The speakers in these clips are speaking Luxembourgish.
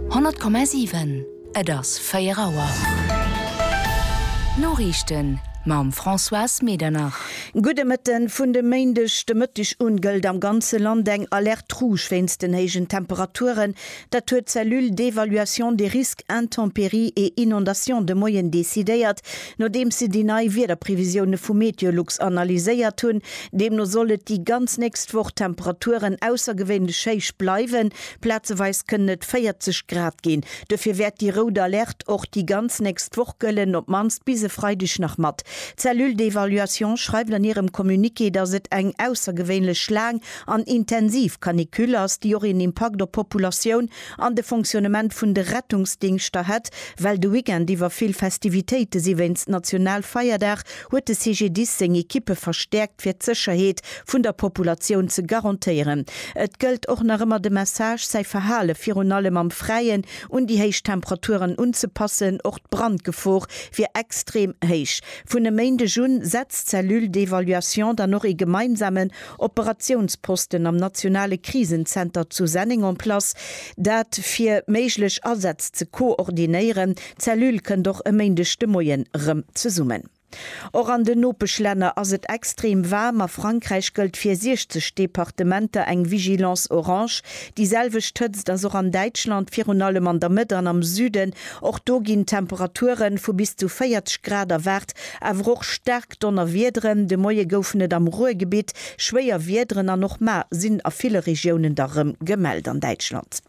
100,7 Et ass 4 Auer. D'Noriichten mam Françoise Medernach. Gudde Mëtten. Vun de Méindeg de Mëtteg un gëllt am ganze Land eng Alerte Rouge wéinst den héijen Temperaturen. Dat huet d'Cellule d'évaluation des risques intempéries et inondations de Moien decidéiert. Nodeems si déi nei Wiederprevisioune vu Meteolux analyséiert hunn, deemno soll et déi ganz nächst Woch Temperaturen aussergewéinlech héich bleiwen, plazeweis kënnen et 40 Grad ginn. Dofir wäert déi rout Alerte och déi ganz nächst Woch gëllen, op d'mannst bis e Freideg nach mat. D'Cellule d'évaluation schreift an hirem Communiqué, datt et eng aussergewéinlech laang an intensiv Canicule ass, déi och een Impakt op d'Populatioun An de Fonctionnement vun de Rettungsdingschter hätt well de Weekend iwwer vill Festivitéite si wéinst Nationalfeierdag, huet de CGDIS seng Ekippe verstäerkt fir d'Sécherheet vun der Populatioun ze garantéieren. Et gëllt och nach ëmmer de Message, säi Verhale virun allem am Fräien un déi héich Temperaturen unzepassen. Och d'Brandgefor wier extrem héich. Vun e Méindeg un setzt d'Cellule d'évaluation dann och ee gemeinsamen Operatiounsposten am nationale Krisenzenter zu Senneng en place, dat fir méiglech Asätz ze koordinéieren. D'Cellule kënnt och e Méindeg de Moien erëm zesummen. Och an den Nopeschlänner ass et extrem waarm. A Frankräich gëllt fir 60 Departementer eng Vigilance orange. Déi selwecht Hëtzt ass och an Däitschland, virun allem an der Mëtt an am Süden. Och do ginn Temperature vu bis zu 40 Grad erwaart, awer och staark. Staark Donnerwiederen, de Moie goufen et am Ruhrgebitt schwéier Wiederen an och mar sinn a ville Regiounen der rëm gemellt an Däitschland.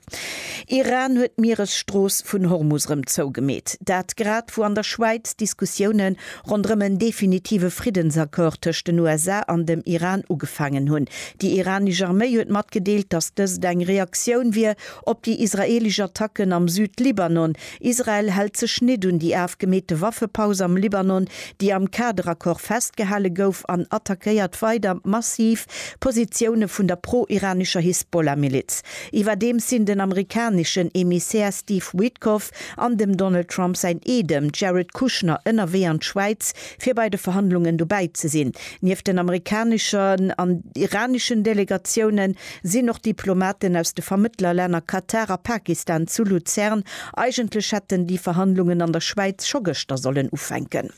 Iran huet d'Mieresstrooss vun Hormus rëm zougemeet. Dat grad wou an der Schwäiz d'Diskussioune ronderëm en definitive Friddensaccord tëscht den USA an dem Iran ugefaangen hunn. Déi iranesch Arméi huet matgedeelt, datt dëst eng Reaktioun wier op déi israeelesch Attacken am Süd-Libanon, Israel hält sech nit un déi afgemeete Waffepaus am Libanon, déi am Kaderaccord festgehale gouf, an attackéiert weider massiv Positioune vun der pro-iranescher Hisbollah-Miliz. Iwwerdeems sinn den amerikaneschen Emissär Steve Witkoff an dem Donald Trump säin Eedem Jared Kushner ënnerwee an d'Schwäiz, fir bei de Verhandlungen dobäi ze sinn. Nieft den amerikaneschen an iraneschen Delegatiounen, sinn och Diplomaten aus de Vermëttlerlänner Katar a Pakistan zu Luzern. Eigentlech hätten déi Verhandlungen an der Schwäiz scho gëschter sollen ufänken.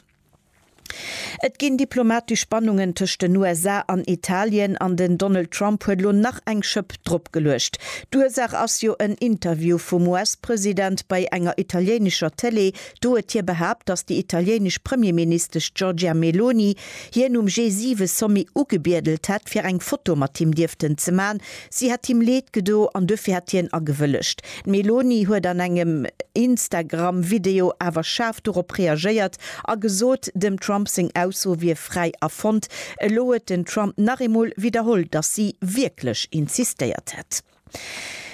Et ginn diplomatesch Spannungen tëscht den USA an Italien an den Donald Trump huet elo nach eng Schëpp drop geluecht. D'Ursaach ass jo en Interview vum US-President bei enger italiéinescher Tëlee. Do huet hie behaapt, datt déi italiéinesch Premierministesch Giorgia Meloni hien um G7-Sommet ugebiedelt hätt, fir eng Foto mat him dierften ze man. Si hätt him Leed gedo an duerfir hätt hien agewëllegt. D'Meloni huet an engem Instagram-Video awer schaarf dorop reagéiert a gesot, dem Trump seng Ausso wier fräi erfonnt. Elo huet den Trump nach eemol widderholl, datt si wierklech insistéiert hätt.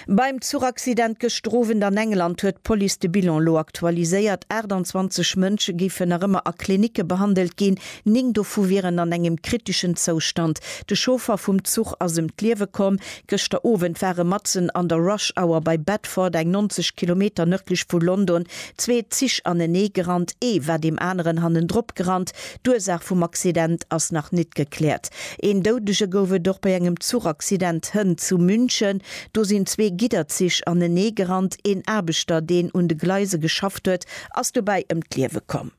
Beim Zuchaccident gëschter Owend an England huet d'Police de Bilan elo aktualiséiert. 28 Mënsche géifen nach ëmmer a Klinicke behandelt ginn, néng dovu wieren an engem kriteschen Zoustand. De Chauffer vum Zuch ass ëm d'Liewe komm. Gëschter Owend ware matzen an der Rush Hour bei Bedford, eng 90 Kilometer nërdlech vu London, zwee Zich aneneegerannt. Ee war deem aneren hannendropgerannt. D'Ursaach vum Accident ass nach nit gekläert. Een Doudege gouf et och bei engem Zuchaccident hënt zu München. Do sinn zwee Gidderzich anenee gerannt. Een Aarbechter, deen un de Gleise geschafft huet, ass dobäi ëm d'Liewe komm.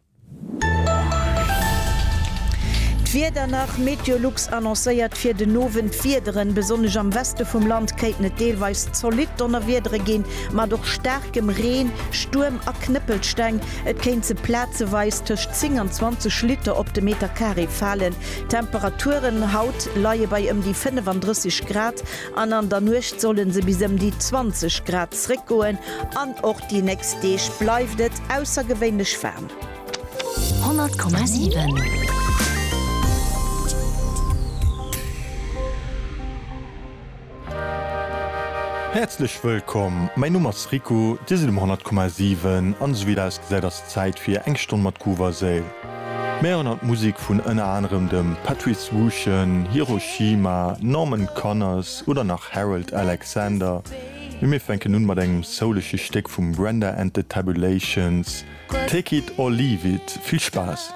D'Wieder nach, Meteolux annoncéiert fir den Owend d'Wiederen. Besonnesch am Weste vum Land kéinten et deelweis zolidd Donnerwiedere ginn, mat och staarkem Reen, Stuerm a Knëppelsteng. Et kéint se plazeweis tëscht 10 an 20 Liter op de Meter Carré falen. D'Temperaturen haut leie bei ëm déi 35 Grad an an der Nuecht solle se bis ëm déi 20 Grad zréckgoen an och déi nächst Deeg bleift et aussergewéinlech waarm. 100,7. Häerzlech wëllkomm, mäin Numm ass Riku, Dir sidd um 100,7 an esou wéi et ausgesäit ass et Zäit fir eng Stonn mat Groovasale. Mir héieren haut Musek vun ënner anerem dem Patrice Wuchen, Hiroshima, Norman Connors oder nach Harold Alexander, mee mir fänken un mat engem soulische Stéck vum Brenda and the Tabulations, Take it or leave it. Vill Spaass!